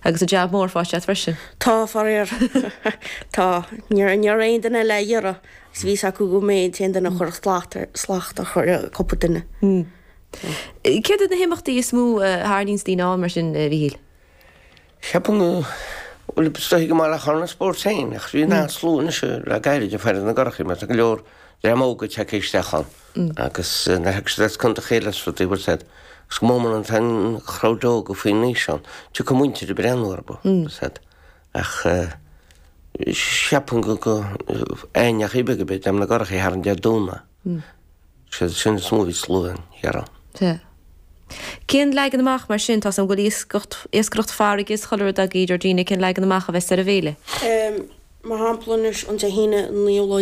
Agus an jab mór faighte agat freisin? Tá, faraor. Tá. Ní raibh aon duine eile dhá iarraidh agus bhí fhios acu go mbeinn in ann duine cur slacht a chur ar chúpla duine. Céard iad na himeachtaí is mó a tharraingíonns daoine ann mar sin, a Mhíchíl? Ceapaim go bhfuil siad ag tíocht go maith le chuile spórt ann, ach bhíonn an-slua anois le gairid ag faire na gcurachaí mar tá go leor dream óg ag teacht isteach ann. Agus na hExtrades contaetha eile is rudaí an bhfuil a fhios agat agus go mór mór tá an crowd óga faoi aois ann, tiocfaidh a muintir ag breathnú orthu, bhfuil a fhios agat ach cheapfainn go go aon neach ibeag a bith dem na gcurachaí thar an Dé Domhnaigh, sé sin is mó a bhíonn slua ann, dáiríre. Tá. Cén leagan amach mar sin tá a fhios agam go bhfuil iascaireacht farraige is chuile rud agaibh ar ndóigh cén leagan amach a bheas ar an bhféile? Mar shampla anois an Dé hAoine an 19ú lá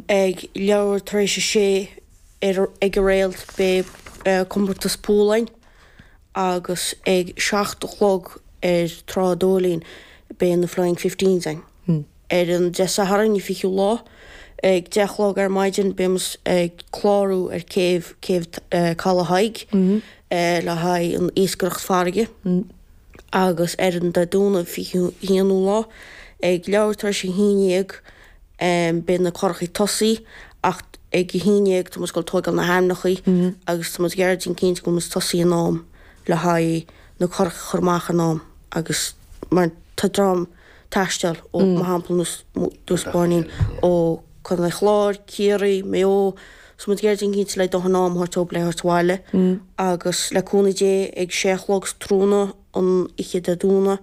ag leathuair tar éis a sé ag an Réalt beidh comórtas púl againn agus ag seacht a chlog ar Trá an Dóilín beidh na Flying Fifteens againn. Ar an Dé Sathairn an fichiú lá ag deich a chlog ar maidin beidh muid ag clárú ar céibh, Céibh Caladh Thaidhg, le haghaidh an iascaireacht farraige. agus ar an Dé Domhnaigh 21ú lá ag leathuair tar éis a haon déag beidh na curachaí ag tosaí ach ag a haon déag tá muid ag dul tóigeáil na hainmneacha agus tá muid ag iarraidh déanamh cinnte go mbeidh muid ag tosaí in am le haghaidh na curachaí a chur amach in am agus mar tá dream taisteal ó, mar shampla, Inis Bó Finne ó Contae an Chláir, Ciarraí, Maigh Eo, so muid ag iarraidh déanamh cinnte le dóthain am a thabhairt dóibh le thabhairt abhaile agus le cúnamh Dé ag sé a chlog sa tráthnóna an oíche Dé Domhnaigh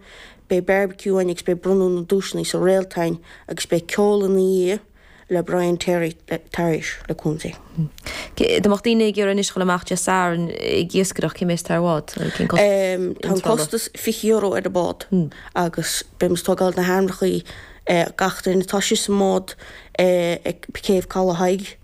beidh barbecue againn agus beidh bronnadh na duaiseanna sa Réalt againn agus beidh ceol ina dhiaidh. le Brian Terry tar éis le cúnamh Dé. Má tá daoine ag iarraidh anois dul amach Dé Sathairn ag iascaireacht, cé mhéad atá air? Tá an costas €20 ar an bád agus beidh muid tógáil na hainmneacha gach duine. Tá sé sa mbád ag céibh Caladh Thaidhg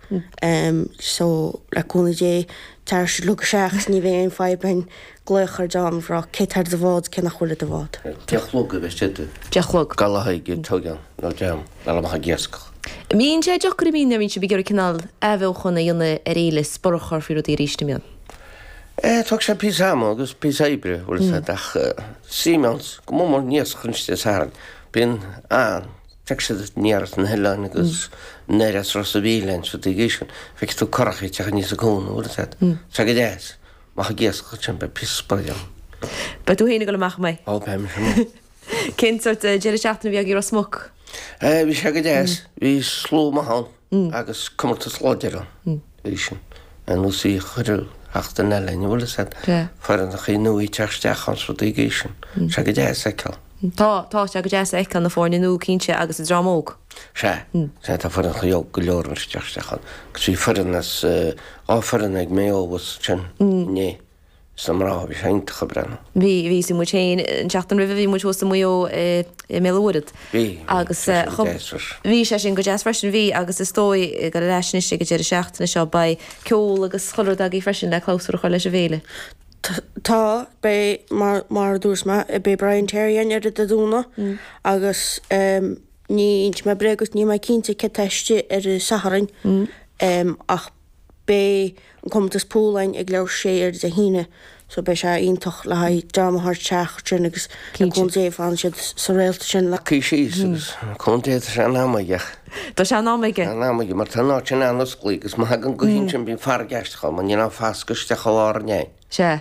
so le cúnamh Dé tar éis a chlog a seacht ní bheidh aon fadhb againn glaoch ar d'fhón ag rá cé tá ar do bhád cé nach bhfuil ar do bhád. deich a chlog a bheas sé. deich a chlog. Caladh Thaidhg don dream ag dul amach ag iascach. an mbíonn sé deacair an mbíonn nuair a bhíonn sibh ag iarraidh cineál athbheochan a dhéanamh ar fhéile is borradh a chur faoi rudaí arís an mbíonn? eh tógann sé píosa ama agus píosa oibre an bhfuil a fhios agat ach sí meán go mór mór an t-iascach Dé Sathairn bíonn an feiceann siad aniar as na hoileáin agus aniar as Ros a' Mhíl bíonn siad ag iascach feicfidh tú curach ag teacht aníos an cuan an bhfuil a fhios agat tá sé go deas Má thig iasc go timpeall pí spraoi linn. Beidh tú féin ag dul amach mé. Ó beidh mise mó. Cén sort deireadh seachtaine a bhí agaibh i Ros Muc? Eh bhí sé go deas. Bhí slua maith ann agus comórtas láidir ann freisin. Ar nós bhí chuile sheachtain eile, an bhfuil a fhios agat, foirne nua ag teacht isteach ann is rudaí mar sin. Tá sé go deas a fheiceáil. Tá, tá, sé go deas a fheiceáil na foirne nua cinnte agus an dream óg. Sea, sea tá foirne óga go leor ag teacht isteach ann agus bhí foireann as foireann as Maigh Eo abhus ansin inné. Sna mná, bhí sé iontach ag breathnú. Bhí, bhí. Sin muid féin. An tseachtain roimhe bhí muid thuas i Maigh Eo i mBéal Mhuirthead. Bhí, bhí. Bhí sé sin go deas freisin. Bhí sé sin go deas freisin, bhí, agus is dóigh gur ar ais anois ag an deireadh seachtaine seo. Beidh ceol agus chuile rud againn freisin le clabhsúr a chur leis an bhféile. Tá, beidh, mar a dúirt mé, beidh Brian Terry ann ar oíche Dé Domhnaigh agus. Ní inseoidh mé bréag duit, níl mé cinnte cé atá istigh ar an Satharn ach beidh an comórtas púl againn ag leathuair tar éis a sé ar Dé hAoine so beidh sé iontach le haghaidh dream a thabhairt isteach sin agus le cúnamh Dé fanfaidh sé socraithe sin, le cúnamh Dé tá sé in am aige ach tá sé in am aige in am aige mar tá an áit sin an-osclaí agus má thagann gaoth ansin bíonn farraige aisteach ann mar níl an fascadh isteach i lár an fhéir. Sea.